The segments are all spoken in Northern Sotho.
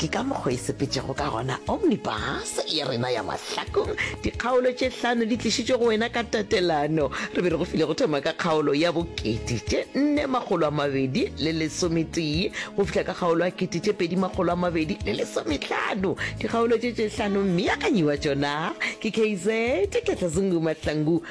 ke ka mokgo e sepetšego ka gona omnibus ya rena ya mahlakong dikgaolo tše hlano di tlišitšwe go wena ka tatelano re be re go file go thoma ka kgaolo ya bokete tše nne makgolo a mabedi le lesometee go fihla ka kgaolo ya kete tše pedi makgolo a mabedi le lesometlhano dikgaolo tše tše hlano mme ya kanyiwa tšona ke kz ketlazungu mahlangu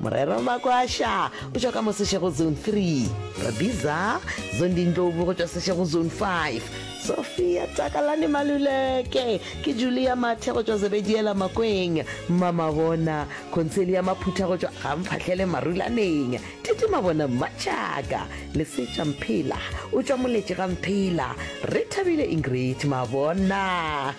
Morero Makwasha o tšwa ka mo Seshego Zone 3. Radiza Zondi Ndlovu go tšwa Seshego Zone 5. Sophia Takalani Maluleke ke Julia Mathe go tšwa Zebediela Makweng. Mamabona Concelia Maphutha go tšwa Gamphahlele Marulaneng. Titi Mabona Mmatšhaka. Lesetša Mphela o tšwa Moletše ga Mphela. Re thabile Ingrid Mabona.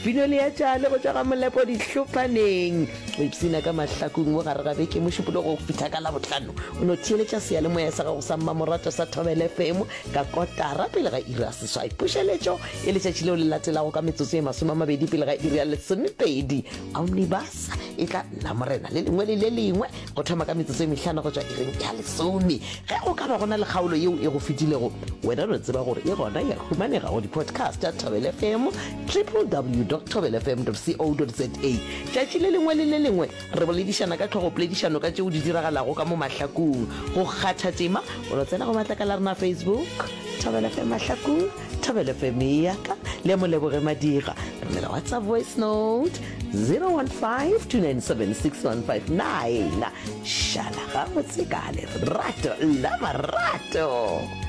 Pino Leatšane go tšwa ga Molepo Dihlophaneng. o ipsina ka mahlakong mo gare ga beke mošupolo go fitha ka labotlhano o no theeletša seyalemoya sa gago sa mmamoratwa sa thobele fm ka kotara pele ga iri ya seswai pušeletšo e letšatši leo le latelago ka metsotso ye masome a mabedi pele ga iri ya lesomepedi omnibus e tla nna morena le lengwe le le lengwe go thoma ka metsotso e mehlano go tšwa iring ya lesome ge go ka ba gona le kgaolo yeo e go fetilego wena no tseba gore e gona ya humanega go di-podcast ya thobele fm www tobelefm co za Tšatši le lengwe le le lengwe re boledišana ka tlhogopoledišano ka tšeo di diragalago ka mo mahlakong. Go kgatha tema, o no tsena go matlakala a rena a Facebook, Thobela FM Mahlakong, Thobela FM e ya ka, le ya Moleboge Madira. Re romela WhatsApp voice note 015 297 6159. Šala gabotse ka lerato la marato.